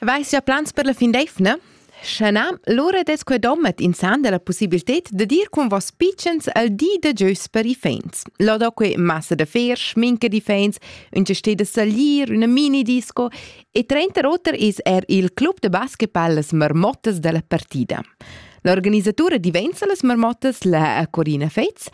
Vais ja plans per la fin d'eivna? Sche na, lura des quei dommet insan della possibilität de dir con vos pitschens al di de geus per i fens. Lo do que massa de fer, schminke di fens, un ce steht de salir, una mini disco e trenta roter is er il club de basketball las marmottas della partida. L'organisatura diventa las marmottas la Corina Fez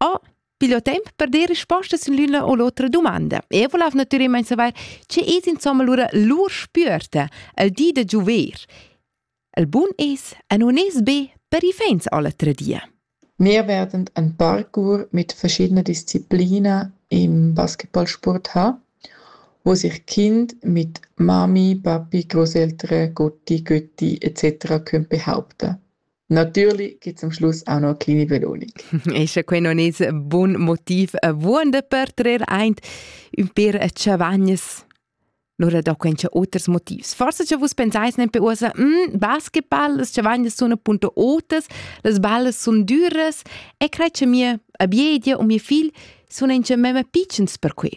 Oh, pigl ho temp per dir rispostas in l'üna o l'otra dumanda. Eu volov natüralmaing savair, che es insomma lura lur spüerta al di da giuver. Il bun es, e nun es be per i fans alle tre die. Wir werden ein Parcours mit verschiedenen Disziplinen im Basketballsport haben, wo sich Kinder mit Mami, Papi, Großeltern, Gotti, Götti etc. können behaupten Natürli chi zum Schluss ha ün oclini velonic. E scha quai non es bun motiv buonder per trer aint ün per chavagnas, lura do quencha oters motivs. Forsa cha vus pensais nempe uossa, hm, basketball, las chavagnas sun appunto otas, las ballas sun düras e crai cha mia abiedia u mia figl sun incha memma pitschens per que.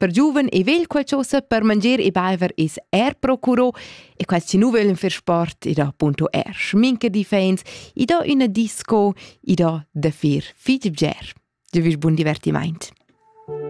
Per giuven e vegl qualchosa per mangier e baiver es er procuro e quels chi nu vöglan fer sport i do punto er schminke difens, i do üna disco, i do da fer fich bger. Giovüsch bun divertimaint.